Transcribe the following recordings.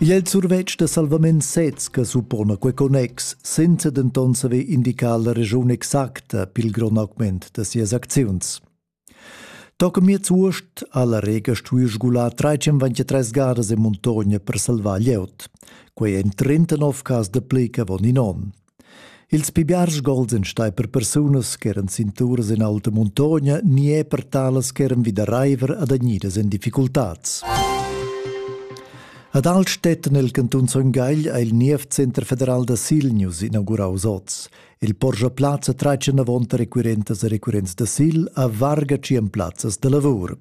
Igl è il survetsch da salvament sez che suppona quei connex, senza denton saver indicar la regiun exacta pil grond augment da sias acziuns. Toca miez uost ha la Rega stuì sgular 323 garas e montogna per salvar glieud. Quei en 39 cas de ple che von in on. Ils pli biars gols ein stai per persunas ch'eran sin turas en alta muntogna ni er per talas ch'eran vida reiver adagnidas en difficultads. Ad Altstetten el cantun Son Gagl ha il Nievcenter federal da Silnius inaugurau oz. Il Porsche Plazza tratga avonta requirentas e requirents da Sil a varga tschien plazzas da lavur.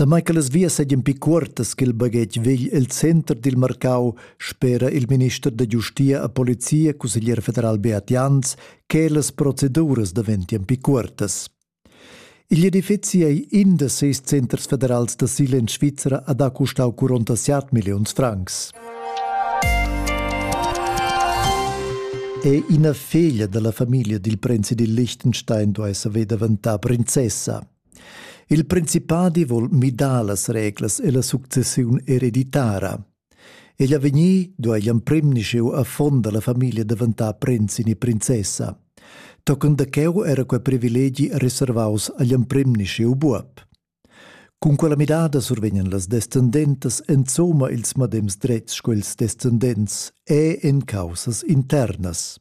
Damai che las vias seigien pli cuortas ch'il baghetg vegl el center dil marcau, spera il minister da giustia e polizia, cusseglier federal Beat Jans, che las proceduras daventien pli cuortas. Igl edifeci ei in da seis centers federals d'asil en Svizra ad ha custau 47 milliuns francs. È ina feglia dalla famiglia dil prinzi dil Liechtenstein duei saver daventar prinzessa. Il principadi vol midar las reglas e la successiun ereditara. Egl avegnir do egl emprim nischeu affon dalla famiglia daventar prinzin e princessa. Tochen da cheu era quei privilegi reservaus agl emprim nischeu buob. Cun quella midada survegnan las descendentas enzoma ils madems drets sco ils descendents e en caussas internas.